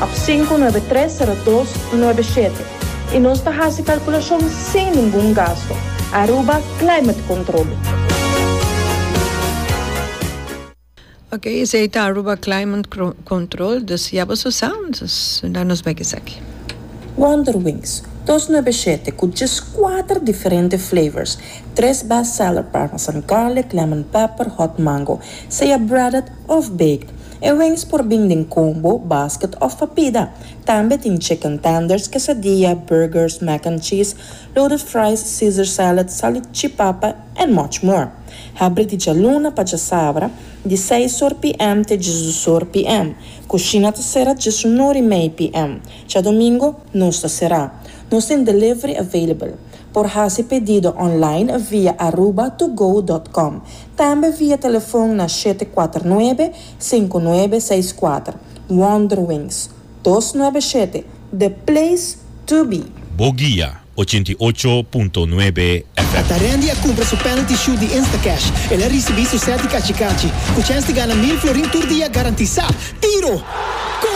Ap sinku nuebe tres sero dos nuebe shete i nos ta hasi kalkulashon sin ningun gasto. Aruba Climate Control. Ok, esei ta Aruba Climate Control, dus ya boso sa, dus nan nos bai keseki. Wonderwings dos nuebe shete ku djes kuater diferente flavors, tres best seller parmesan garlic, lemon pepper, hot mango, seya breaded, Òf baked. E wings por bin den combo, basket òf pa pida. Tambe tin chicken tenders, quesadilla, burgers, mac and cheese, loaded fries, caesar salad, salichipapa and much more. Habri di djaluna pa djasabra, di seis or PM te djezes or PM. Cushina ta cera djesun or y mei PM. Djadomingo nos ta cera. Nos tin delivery available. Por haci pedido online via aruba2go dot com. Tambe via telefon na shete kuater nuebe, sinku nuebe, seis kuater. Wanderwings, dos nuebe shete, the place to be! Bo guia ochenta i ocho punto nuebe FM. Ta Randy a cumpra su penalty shoot di Instacash. El a ricibi su set di cachicachi. Cu chens di gana mil florin tur dia garantisa! Tiro! Goal!